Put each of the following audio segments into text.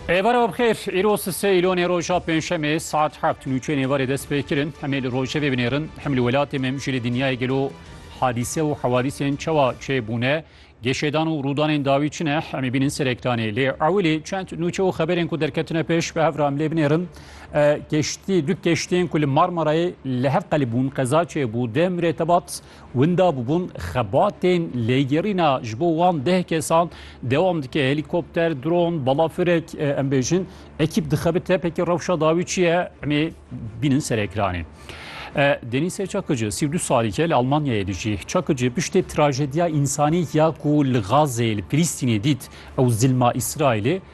Êvara bixêr, îro sisê îlonê roja pênşemê saet heft nûçeyên êvarê dest pê kirin. Em ê li rojevê binêrin. Hem li welatê me hem jî li dinyayê gelo hadîse û hewadîsên çawa çê bûne, geşêdan û rûdanên dawî çi ne em ê bînin serektanê. Lê ewilî çend nûçe û xeberên ku derketine pêş bi hev re em lê binêrin. Keştî du keştiyên ku li Marmarayê li hev qelibûn qeza çê bû deh mirêtebat. Winda bûbûn xebatên lêgerîna ji bo wan deh kesan dewam dike. Helîkopter, dron, balafirek em bêjin ekîp dixebit tepekî rewşa dawî çi ye emê bînin ser ekranê. Denîse Çakıcı sî du salîke li Almanyayê dijî. Çakıcı piştê trajediya însanî ya ku li Gazê li Filîstînê dît ew zilma Îsraîlê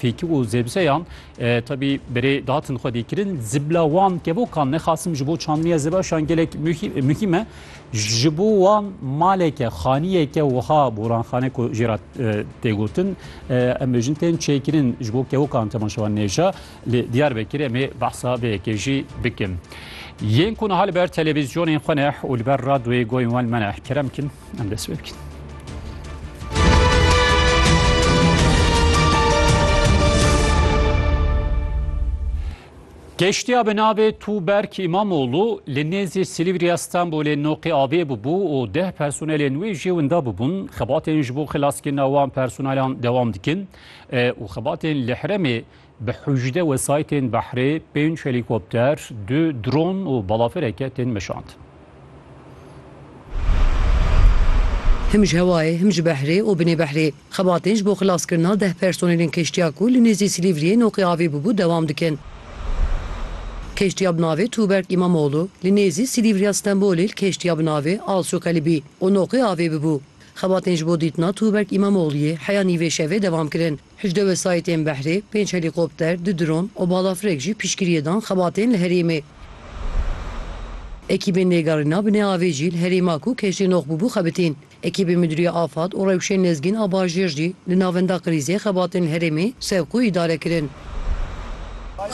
Fêkî û zêbiseyan tebî berê datin xwe dê kirin zibla wan kevokan nexasim ji bo çandiniya zebaşan gelek muhîm e ji bo wan maleke xaniyeke wiha boranxane ku jê re têgotin em bêjin tên çêkirin ji bo kevokan temaşewan nêja li diyar vekirê em ê behsa vê yekê jî bikin yên ku niha li ber televîzyonên xwe neh û li ber radyoyê goyên wan me neh kerem kin Em dest pê bikin. Geştiya bi navê Tuberk Îmamoğlu li nêzî Silîvriya Stenbolê noqê avê bûbû û deh personelên wê jê winda bûbûn. Xebatên ji bo xilaskirina wan personelan dewam dikin e, û xebatên li herêmê Bi hejde wesaytên behrê pênc helîkopter, du dron û balafireke tên meşand. Him ji hewayê, him ji behrê û binê behrê xebatên ji bo xilaskirina deh personelên kêştiya ku li nêzî Silîvriyê noqî avê bûbû dewam dikin. Kêştiya bi navê Tuğberk İmamoğlu li nêzî Silîvriya Stenbolê li kêştiya bi navê Alsokali bî û noqî avê bûbû. Xebatên ji bo dîtina Tuğberk İmamoğluyê heya nîvê şevê devam kirin. Hejdeh wesayîtên behrê, pênc helîkopter, du dron û balafirek jî piştgiriyê dan xebatên li herêmê. Ekîbên lêgerîna binê avê jî li herêma ku keştê nox bûbû xebitîn. Ekîbê Midûriya Afad û rewşên lezgîn a bajêr jî li navenda krîzê xebatên li herêmê sevq û îdare kirin.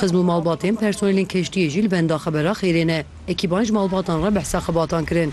Xizm û malbatên personelên keştiyê jî li benda xebera xêrê ne. Ekîban ji malbatan re behsa xebatan kirin.